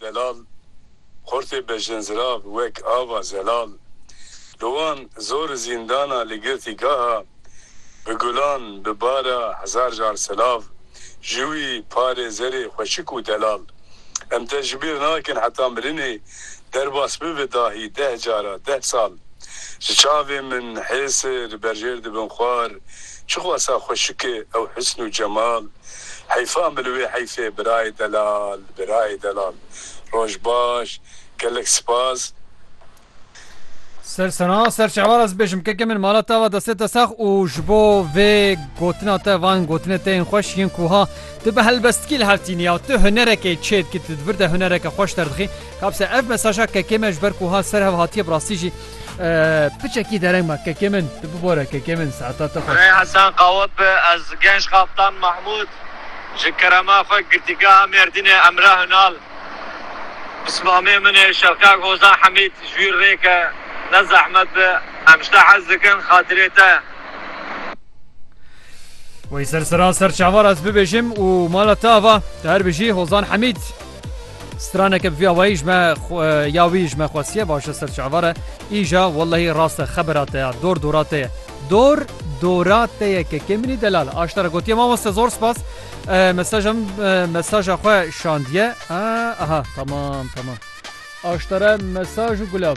Delal, xortê bejin zirav wek ava zelal li wan zor zîndana li girtî gaha bi gulan bi bara hezar jar silav ji wî parê zerê xweşik û delal em te ji bîr nakin heta mirinê derbas bibe dahî deh cara, deh sal. Ji çavên min hêsê li berjêr dibin xwar, çixwasa xweşikê ew hisn û cemal. Heyfan bi li wê heyfê birayê delal, birayê delal. Roj baş, gelek sipas. Ser sena, ser şehwar ez bêjim keke min mala te ava destê te sax û ji bo vê gotina te van gotinê te yên xweş yên ku ha Tu bi helbestkî li hev tînî ya tu hunerekê çê dikî tu di vir de hunereke xweş derdixî. Kabise ev mesaja kekê me ji ber ku ha ser hev hatiye bi rastî jî piçekî dereng ma kekê min tu bibore kekê min saeta te xweş. Birayê Hesen Qawip be ez Genç Kaptan Mahmud ji kerema xwe Girtîgeha Mêrdînê Emre Hunal bi sibamê min ê Şevkak Hozan Hemîd ji wî rêke ne zehmet be em ji te hez dikin xatirê te. Wê ser sera ser çavar ez bibêjim û mala te ava te her bijî Hozan Hemîd. Straneke bi vî awayî ji me ya wî ji me xwestiye başe ser çavar e. Îja wellehî rast e xebera te ya dor dora te ye. Dor dora te ye ke kêminî delal aşta re gotiye mamoste zor spas. Mesaja min mesaja xwe şandiye. Aha tamam tamam. Aşta re mesaj û gulab.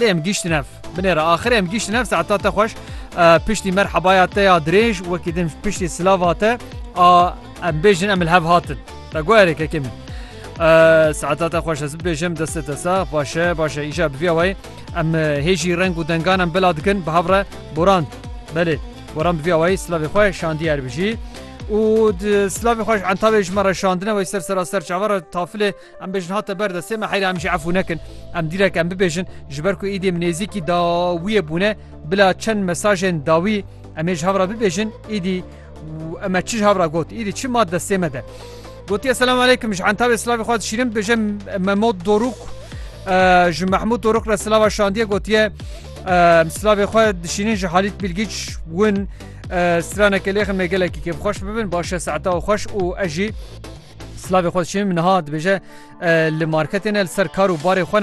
Lê em gihîştin ev binê re. Axirê em gihîştin ev saeta te xweş. Piştî merhebaya te ya dirêj wekî din piştî silava te a em bêjin em li hev hatin. Te got erê kekê min. Saeta te xweş ez bibêjim destê te sax başe başe îşa biviya wayê em hêjî reng û dengan em bila dikin bi hev re boran. Belê boran biviya wayê silavê xwe şandî er bijî. û silavê xweş entavê ji me re şandine wey ser sera ser çavara tafilê Em bêjin hate ber destê me heyra em jî efû nekin. Em dîrek em bibêjin ji ber ku êdî em nêzîkî dawiyê bûne bila çend mesajên dawî em ê ji hev re bibêjin êdî û em e çi ji hev re got êdî çi mat destê me de. Gotiye selam aleykum ji entavê silavê xwe dişîrim bêje Memod Dorûk ji Mehmûd Dorûk re silava şandiye gotiye silavê xwe dişînin ji Halît Bilgiç win straneke lêxin me gelekî kêfxweş bibin başe saeta û xweş û ejî Silavê xwe diçîn, min niha dibêje li marketê ne, li ser kar û barê xwe ne.